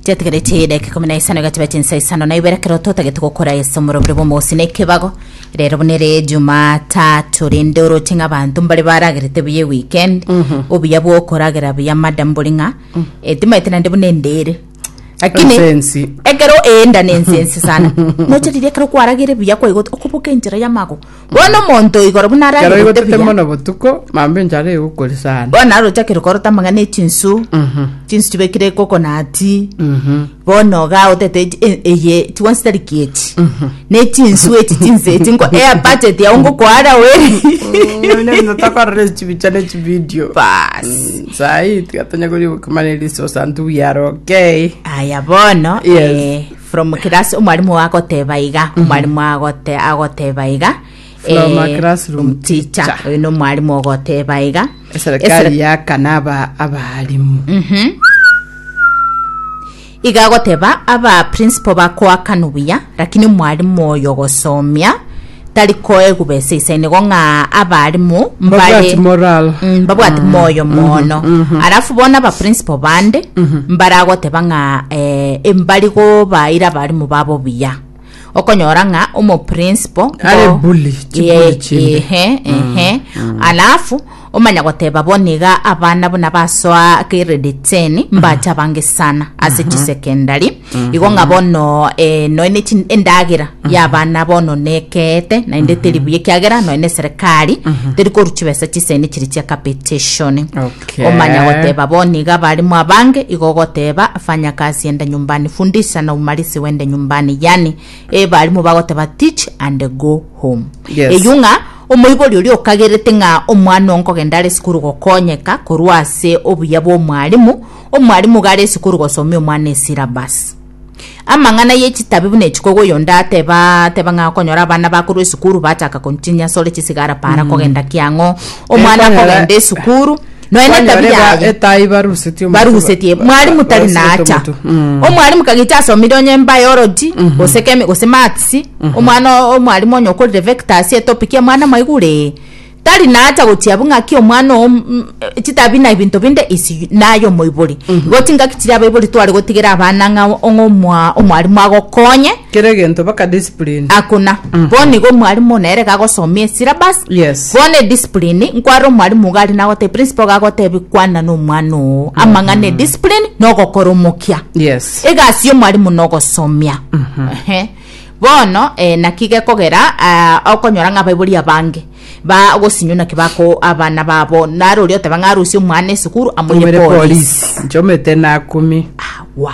tiatigareti edeka ikumi na isano egatiba chinsa isano na ibere kero totagete gokora ase omorobire bw'omosi na ekebago rero buna ere jumatatu rende oroche ng'a abanto mbare baragerete buya eweekend obuya bwokoragera buya madam bori ng'a etimaete naende buna endere lakini Ensensi. ekero eenda nensensi sana nocharirie ekero kwaragire buya kwaigote okoboka enchera y'amago Bono omonto igoro buna Ekero ararigute igotete buya, mono botuko, mambia enchara egokori sana. bono arochakire korota amang'ana e chinsu, Mhm, chinsu chibekire kokonati, mhm, bono ga otete echi- e- eye chionsi tari kieti mhm. ne chinsu echi chinse echi ngo ea budget yao ngokwara weri Nonya buna tokorora echibicha na echivideo. bas Mm, sahi tiga tonya kori gokimana erisosa ntuya are okay. aya bono Yes. eh, From class omwalimu agoteba iga omwalimu agote agoteba iga eh, From a classroom teacher teacher. oyo nomwalimu ogoteba iga eserikali yakana aba abalimu iga agoteba aba principal bakoakana buya lakini omwalimu oyo ogosomia tari koegwa besa ise nigo ng'a abarimu mbare Babwati moral. Mm, babwati moyo mono alafu bona ba principal bande mbaragoteba ng'a eh, embari gobaira abarimu babo buya okonyora ng'a omo principal Are bully, chibully chinde. ehe ehe alafu Omanya goteba bo niga abana buna basoa grade 10 mbacha bange sana ase mhm. chisekendari mhm. igo ng'a bono eh, noe ne endagera mhm. ya abana bono nekeete naende teri buya ekiagera noe ne serikari teri koru chibesa chisene chiri chia capitation omanya goteba bo niga abarimu abange igo goteba fanya kazi ende nyumbani fundisha na umarisi wende nyumbani yani e eh, barimu bagoteba teach and go home eyung'a Omoibori oria okagerete ng'a omwana oo nkogenda are esukuru gokonyeka korwa ase obuya bw'omwarimu, omwarimu iga are esukuru gosomia omwana esyllabus. Amang'ana ye chitabi buna echiko iga oyonde ateba ateba ng'a okonyora abana bakorwa esukuru bachaka konywa chinyasore chisigara para kogenda kiang'o, omwana Ekonyora- akogenda esukuru, Nonya na Kwanyora etabia eba- aya. etaai barusetie omotu, barugusetie ba- mwarimu ba- tari barusetie nacha omotu. Mm. omwarimu kagicha asomire onye biology gose kemi gose maths omwana o- omwarimu onye okorire vectors etopic ya mwana maigure tari nacha gochia abwo ng'aki omwana oo mm, mm, chitabi na ebinto binde isi naye omoibori igo chingaki chiria abaibori tware gotigera abana ng'a ong'omwa omwarimu agokonye Kera egento baka discipline. Hakuna. Bono nigo omwalimu one ere gagosomia esyllabus. Yes. Bono ediscipline, nkwarora omwalimu iga aria nagotebia, principal iga agotebia kwana na omwana oo amang'ana e discipline na ogokora omokia. Yes. Egasi y'omwalimu na ogosomia. Ehe. Bono eh, naki gekogera ah, okonyora ng'a abaibori abange bagosinywa naki bako abana babo naro oria oteba ng'a arusie omwana esukuru amoire Omere polisi. police. Nchomete na kumi. Awa.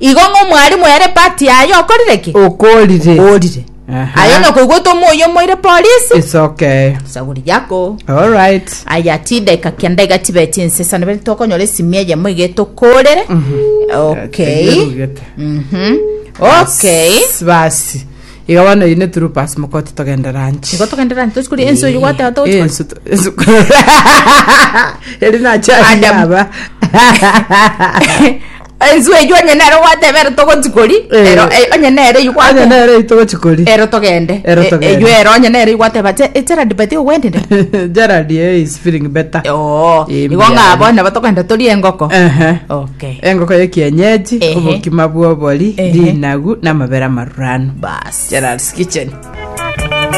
Igo ng'a omwalimu ere pati yaye okorire ki? Okorire. Okorire. Aha. Aye onye okoigwete omoyo omoire polisi, Isokeyo. sagori yako. All right. Aya chideka kenda iga chibe chinsesa nabere tokonyora esimi eyemo iga etokorere. Okay. Erugete. Mhm. Okay. S- Basi. Iga bono oyu ne true pass mokoti togende ranch. Igo togenderani tosikori ensi oyo gwateba togochikora. Ensu to- ensu- Eri nachari Adam. yaba. Ensu eyio onye nere ogwateba ero togochi kori Eh. ero eh, onye nere eyio Onye gwateba nere eyio togochi kori. ero togende Ero Eh, togende. eyio ero onye nere eyio gwateba "Je- eh, Gerald beti ogwendire Gerald eh, is feeling better. oo Eh, igo mbuya ng'abo yari. nabo togenda turi engoko Ehe. okay engoko ya kienyeji Ehe. obokima bwobori Ehe. rinagu namabera marurano bas gerards kitchen